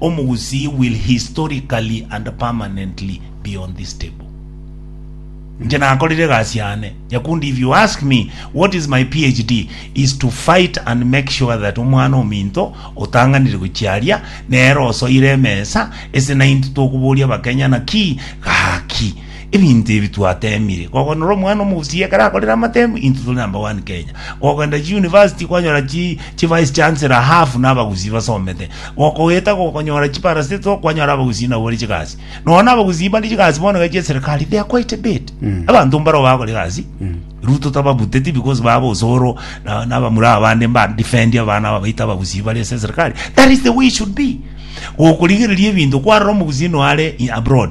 Omogusii will historically and permanently be on this table. Inche nakorire egasi yane. Nyakundi if you ask me what is my PhD is to fight and make sure that omwana ominto otang'anire gochiaria nere osoire emesa ase naintwe tokoboria abakenya naki gaki Ebinto ebi twateemire, kogonora omwana omobosio ekero akorire amatemo, intwe tore number one Kenya. Kogenda chi university kwanyora chi chi vice chancellor half na abagusii basomete. Gokoeta gokonyora chi parastatal kwanyora abagusii nabo bare chigasi. Nonya na abagusii bare chigasi bono iga chia eserikali they are quite a bit. Abanto mbaro bagokora egasi. Ruto tababuteti because baba osoro na na abamura abande mba defend abana aba baito abagusii bare ase eserikali. That is the way it should be. Gokorigereria ebinto kwarora omogusii noyo are abroad.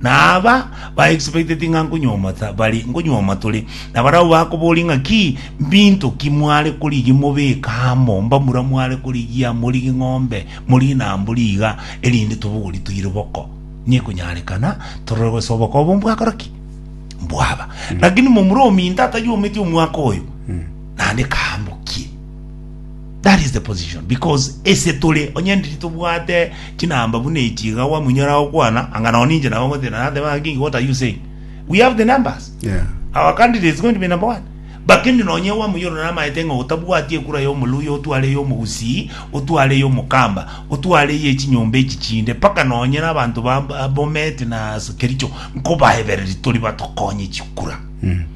Na aba baexpecteti ng'a nkonyuomata bari nkonyuoma tore, na barabwo bakoboria ng'a ki mbinto ki mware korigia mobeke amo, mbamura mware korigia, morigie ng'ombe, morigie na mbori iga, erinde tobogori toire boko. Nekonyarekana torore gose oboko obo mbwakora ki? Mbwaba. Lakini momura ominto atanyuometi omwaka oyo, naende kaambokie. That is the position because ese tore onye ndiri tobwate chinamba buna echi iga gwamunyora gokwana anga nao ninche nabo ngotira nateba ng'a kingi what are you saying we have the numbers Yeah. our candidate is going to be number one bakende nonye wamunyora namaete ng'a otabwati ekura ya omoluya otware ya omogusii otware ya omokamba otware ya echinyomba echi chinde mpaka nonye na abanto ba ba bomet na kericho nkobaebereri tori batokonye chikura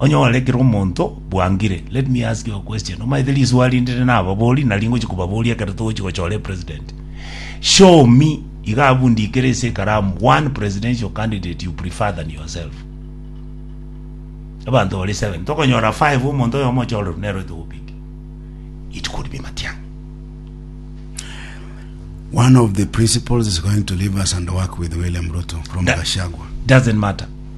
Onyore kera omonto bwangire. Let me ask you a question. Omanyete riswali rinde rinde na ababori nari ngochi kobaboria ekero togochi gochora e president. Show me iga abu ndikere ase ekaramu one presidential candidate you prefer than yourself. Abanto bari seven tokonyora five omonto oyomo ochoreru nero etogopiki. It could be Matiang'i. One of the principles is going to leave us and work with William Ruto from Na- Gashagwa. Doesn't matter.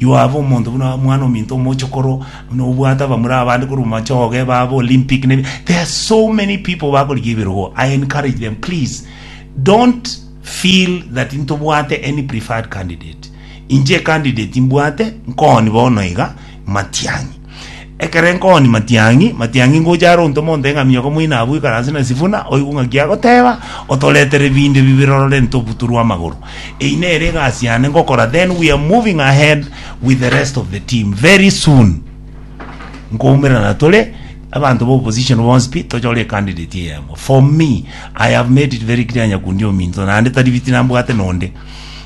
Yoabu, omonto buna omwana-ominto omochokoro, buna obwate abamura abande korwa machoge, babe Olympic, ne there are so many people bakorigia ebirogo. I encourage them, please don't feel that intobwate any preferred candidate. Inche candidate imbwate nkoni bono iga, Matiang'i. Ekero enkooni matiang'i matiang'i ngocha are ontoma ontee ng'a miogo moino abwo ikaranse na esifuna, oigwe ng'aki agoteba, otoretere ebinto ebi birorore ntobuturwe amagoro. Eyi nere egasi yane ngokora then we are moving ahead with the rest of the team very soon nkoumerana tore abanto ba opposition bonsi pi tochore ecandidate eyemo for me I have made it very clear nyakundi ominto naende tari biti nambwate nonde